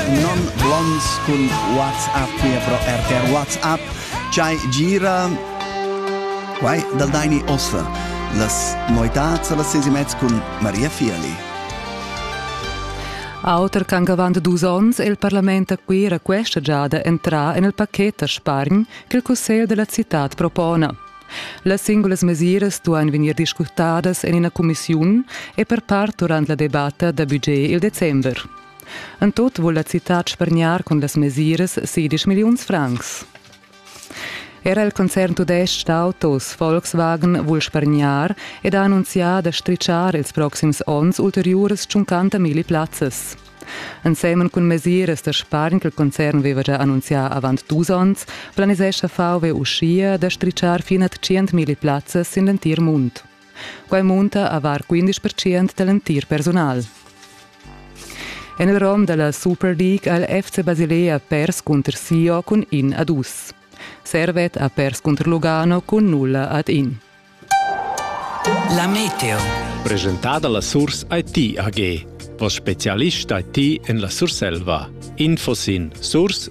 non blonds cun WhatsApp hier pro RTR WhatsApp chai gira quai dal Daini Osfer las noitats las ses mezz cun Maria Fiali Auter ch'han avant dus onns è il parlament a Cuira questa giada entrà en il pacchet da spargn che il Cussegl della città propona. Las singulas mesiras duan vegnir discutadas en ina cumissiun e per part durant la debatta da budget il december. En tut vul la citad spargnar cun las mesiras sedisch milliuns francs. Era il concern tudestg d'autos Volkswagen vul spargnar ed ha annunzià da stritschar ils proxims onns ulteriuras 50 milli plazzas. Ensemen cun mesiras da spargn che il concern aveva già annunzià avant dus onns, planisescha VW uschia da stritschar fin a 100 milli plazzas sin l'entir mund. Quai munta avar 15% da l'entir persunal. En il rom da la Super League ha il FC Basilea pers cunter Sio cun in ad dus. Servet ha pers cunter Lugano cun nulla ad in. La Meteo. Presentada la Surs IT AG. Vos specialist IT en la Surselva. Info sin surs-it.ch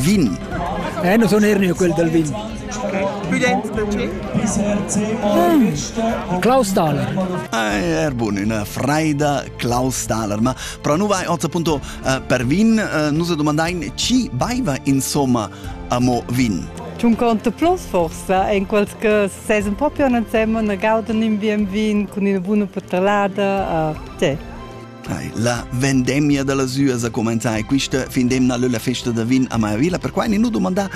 Vin. Eh, non sono Ernio quel del vin. Student luce. Klaus Thaler. Ah, er bun, una freida Klaus Thaler. Ma pro nu vai oz appunto uh, per vin, uh, nus domandain ci baiva insomma amo vin. C'un conto plus forse, in quals che ses un po' più insieme, ne gauden in bien vin con una buona patalada, uh, eh, sì. La vendemmia da las üas ha cumenzà e quista fin d'emna lö la festa da vin a Maiavilla. Perquai ni nu dumandà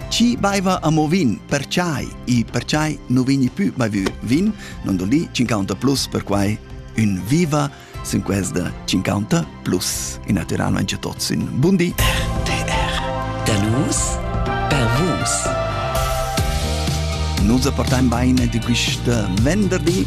chi baiva amo vin, perchai e perchai nu vegni pü baivü vin, non do li 50 plus perquai ün viva sin questa 50 plus. E naturalmente tots in bundi. RTR Da nus per vus. Nus apportaim bain di quista venderdi